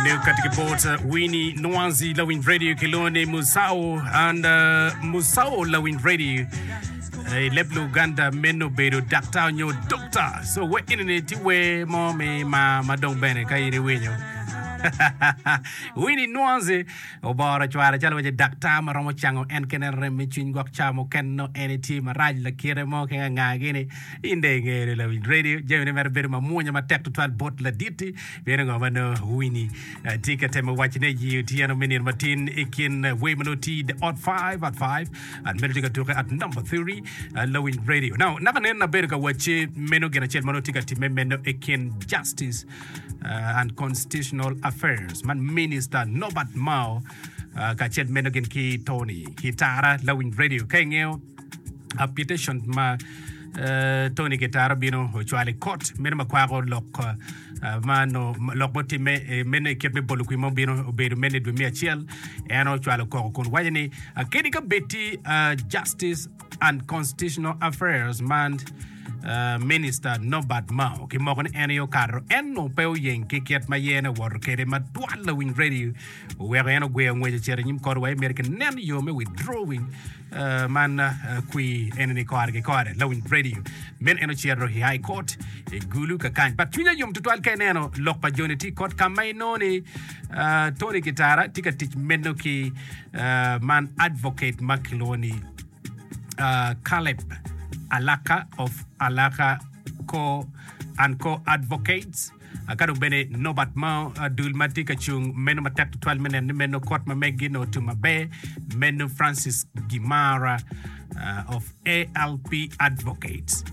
New Cut Keyboards, uh, Winnie Nwanzi, Lawin Radio, Kilone Musao, and uh, Musao Lawin Radio. Eh, leb Luganda meno bedo daktar nyo dokta. So we inene ti we mo me ma ma dong bene ka in iwinyo. Winnie Nwanzi oboro cware calo wace daktar ma romo cango en kene rem me cwiny gwok ca muken no en itye marac lakire mo ke ngangini inde ingene Lawin Radio jamine mere bedo mamwonya matek tutwal bot laditi Pien ango ma nongo Winnie eh, tye ka temo wacone i otyeno me nino matin i kin eh, way ma nongo tye i The Odd Five, Odd Five, at medo tye ka tuke at number 30, eh, Lawiny Radio. Now, naka nen nabedo ka wacce meno gin acel ma nongo tye ka timme meno i kin Justice eh, and Constitutional Affairs man Minister Norbert Mao eh, kacel meno gin ki Tony Kitara Lawiny Radio. Ka ingeyo application ma eh, Tony Kitara bino ocwalo i kot meno ma kwako lok eh, ma onongo lok mutimme eh, meno i kit me bolo kwim ma obino obedo meno i dwe me acel en ocwalo koko kun waco ni ah, kadi ka bedi ah, justice and constitutional affairs man ah, minister nobert mao kimoko ni en aye okato en onongo pe oyeng ki kit ma yene owoto kwede ma twal lawiny radio Weko en ogweyo ngwec ocito i nyim kor wa Emerik nen yo me withdrawing man kwi eneni kore ki kore lawiny radio men en ocito i high court i gulu ka kany but cwinya yom tutwal ka ineno lok pa joni tye kot ka ma inongo ni Tony Kitara tye ka tic meno ki man advocate ma kilwongo ni Caleb Alaka of Alaka Co and Co Advocates Ka dong bene nobat mo dul ma tye ka cung meno matek tutwal me neno ni meno kot ma meggi onongo otum maber, meno Francis Gimara of ALP Advocates.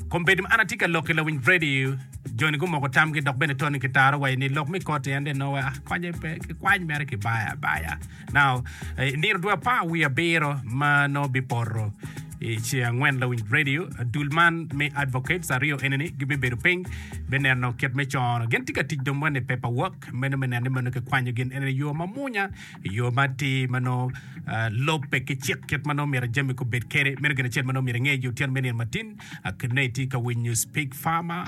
Kombeddi ma an atye ka lok i lawiny Vredi, joni gumoko tamgi dok bene Tony kitaro wayi ni lok me koti en dong nongo wa konye pe, kikwany mere kibaya abaya. Now, i nino dwe apar wiye abiro ma nongo bipoto i ce angwen lawiny radio, dul man me advocates aryo eni-ni gibibedo piny me neno kit me cono. Gin tye ka tic dong wene i paperwork meno me neno ni meno kikwanyo gin eni i yo mamunya, i yo matir ma nongo ah, lobbe ki cik kit ma nongo myero jami kubed kede. Meno gin acel ma nongo myero inge yo tyen me nino matin. Ah, Kit ma itye ka winyo Speak Farmer,